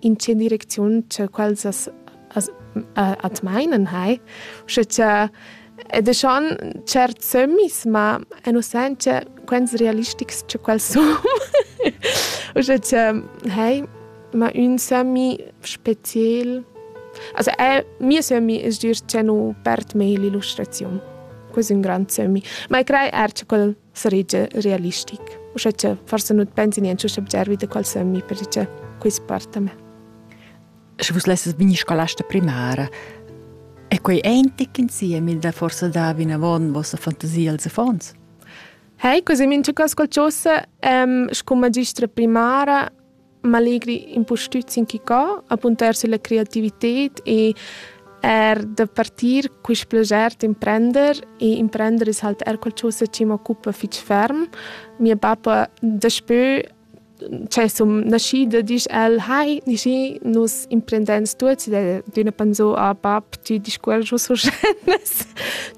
in tge direcziun che quels as, as at mainan hai, sche cha ed e schon certs sömmis, ma e nu sain che quels realistics che quels sun. Uschè che hai, ma ün sömmi speziel Also, è, mio sömmi es dir che nu perd mei l'illustraziun. Ques è un grand sömmi. Ma e crei er che quel saregia realistic. Uschè che forse nu pensi niente subgervi da qual sömmi perché quist parta me. Sche vus lesses bine scolasta primara, è quei eintic insieme da forse davi in avon vostra fantasia als affons? Hei, così min ci ascoltasse, ehm, scu magistra primara, m'allegri impustüt sin chi co, apuntar sülla creativited e er da partir quist plager d'imprender e imprender es halt er qualchosa chi m'occupa fich ferm. Mia bappa daspö cioè sun naschida disch el «Hai, Nishi, nus imprendans tuots» ed üna pensò «Ah bap, tü discuors giò sur scenas,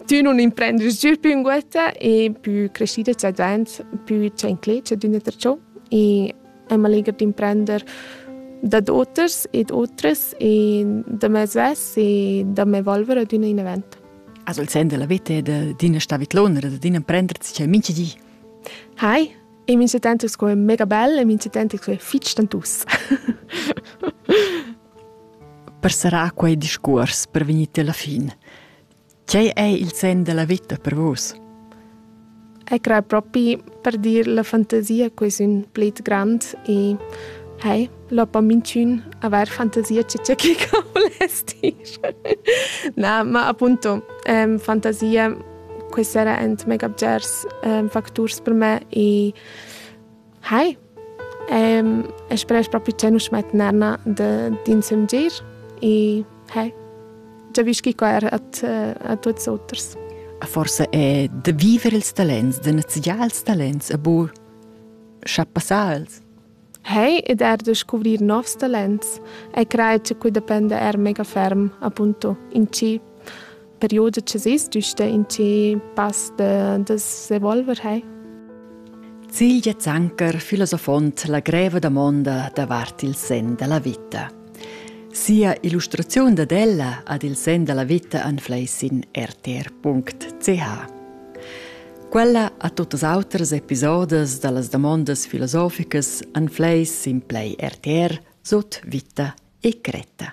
tü nun imprendis giü pü ünguotta e pü crescida c'è dvaint, pü c'è inclet, c'è d'üna tra ciò». E è maleger d'imprender dad oters e d'otres e da me svess e da me evolvere ad un event. Also il sen della vete de dina stavitlonera, de dina prender c'è minche di. Hi, e mi se tento sco è mega bell e mi se tento sco è fitch tantus. per sarà quei discurs per venire alla fine. Tgei ei il senn della vita per vus? Eg crei propi per dir la fantasia che sun plet grand e hei, lopa minchün avair fantasia che tge che ca voless dir. Na, ma appunto, ähm, fantasia, questa era ent mega bgers ähm, facturs per me e Hi, um, speress propi che nus met narna d'insem gir e hey, giavischi qua er a, a tuts auters. Forse è da vivere ils talents, da neziar ils talents, a bu schappasals. Hey, ed er da scuvrir novs talents. E crai che qui depende er mega ferm, appunto, in ci perioda che sis düsta in che pass da, da s'evolver hai. Cilja Zanker filosofont la greva domonda davart il sen della vita. Sia illustraziun dad ella ad il sen della vita anfleis in rtr.ch. Quella a tuttas autras episodes dallas domondas filosoficas anfleis in play RTR sut vita e cretta.